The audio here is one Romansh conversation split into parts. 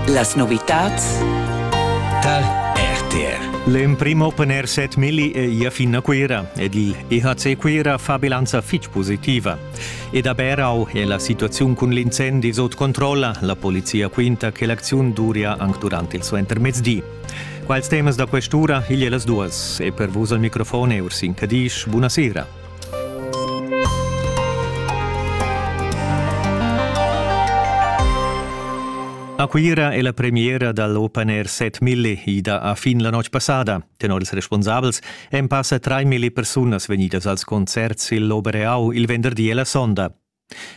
Las novitads tar RTR. L'emprim Open Air Set Milli è ia fin a Cuira ed il EHC Cuira fa bilanza fitg positiva. Ed a Berau è la situaziun cun l'incendi sot controlla. La polizia quinta che l'acziun duria anche durante il suo intermezdi. Quals temas da quest'ura igl e las duas e per vus al microfon Ursin Cadisch, buonasera. A Cuira è la premiera dall'Open Air 7000 ida a fin la notg passada. Tenor ils responsabels èn passa trai milli persunas vegnidas als concerts il Obereau il venderdi e la sonda.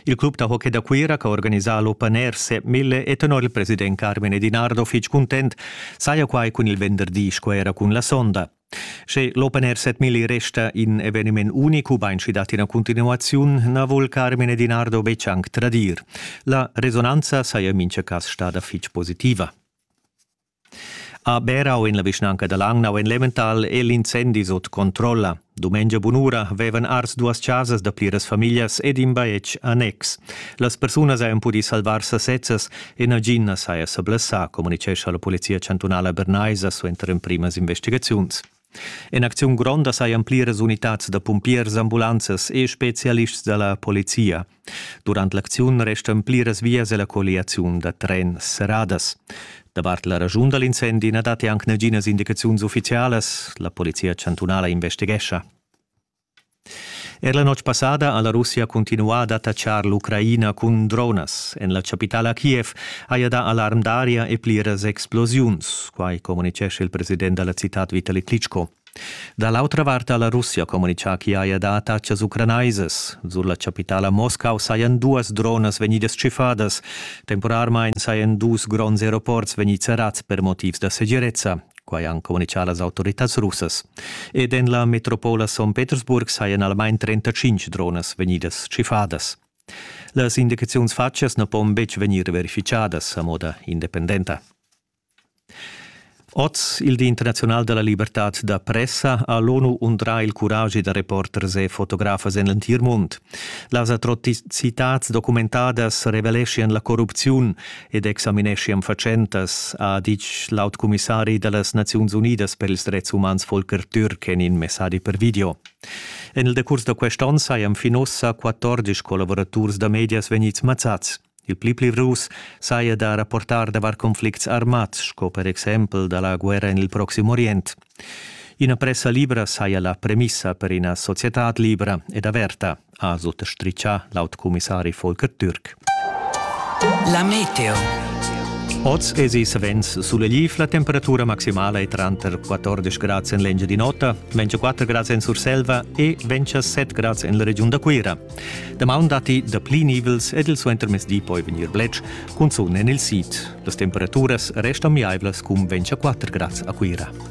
Il club da hockey da Cuira che ha organisà l'Open Air Sepp Mille è tenor il president Carmine Dinardo fitg cuntent, saja quai cun il venderdi sco era cun la sonda. Sche l'Open Air Sepp Mille resta in eveniment unic ubain sch'i dat ina continuaziun, na vul Carmine Dinardo betg anc tradir. La resonanza saja en mintga cas stada fitg positiva. A Berau en la vischnanca da Langnau en Leventhal è l'incendi sut controlla. Dumengia bunura vevan ars duas chasas da pliras famiglias ed in bajetg annex. Las persunas hajan pudì salvar sasezzas e nagin na saja sa blessà, communitgescha la polizia chantunala bernaisa suenter emprimas investigaziuns. En acziun gronda sajan pliras unitads da pumpiers, ambulanzas e spezialists da la polizia. Durant l'acziun restan pliras vias e la colliaziun da tren serradas. Davart la ragiun da l'incendi na datti anc naginas indicaziuns uffizialas. La polizia chantunala investighescha. Er la notg passada ha la Russia cuntinuà d'attatschar l'Ucraina cun dronas. En la chapitala Kiev haja dà alarm d'aria e pliras explosiuns. Quai communitgescha il president da la citad Vitali Klitschko. Da l'autra vart ha la Russia communitgà ch'i haja dà attatgas ucranaisas. Sur la chapitala Moscau sajan duas dronas vegnidas tschiffadas. Temporarmain sajan dus gronds aeroports vegnids serrads per motivs da segirezza. quai han communitgà las autoritads russas. Ed en la metropola St. Petersburg sajan almain 35 dronas vegnidas tschiffadas. Las indicaziuns fatgas na pon betg vegnir verificadas a moda independenta. Oz, il Di internaziunal da la libertad da pressa, ha l'ONU undrà il curagi da reporters e fotografas en l'entir mund. Las atrocitads documentadas reveleschian la corrupziun ed examineschiam fatschentas, ha ditg l'aut cumissari da las Naziuns Unidas per ils dretgs umans Volker Türk en in messadi per video. En il decurs da quest onn sajan fin ussa 14 collavuraturs da medias vegnids mazzads. Il pli pli rus saja da rapportar davart conflicts armads, sco per exempel da la guerra en il Proxim Orient. Ina pressa libra saja la premissa per ina societad libra ed averta, ha suttastritgà l'aut cumissari Volker Türk. La meteo. Oz esi savens sulegliv, la temperatura maximala è tranter 14 grads en l'Engiadin'Ota, 24 grads en Surselva e 27 grads en la regiun da Cuira. Damaun datti dapli nivels ed il suentermezdi poi vegnir bletsch, cun zon en il sid. Las temperaturas restan miaivlas cun 24 grads a Cuira.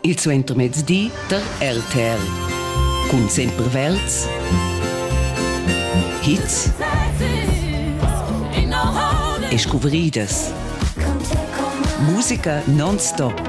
il suentermezdi der RTL. Cun sempre Welts. Hits e scuvridas. Musica non-stop.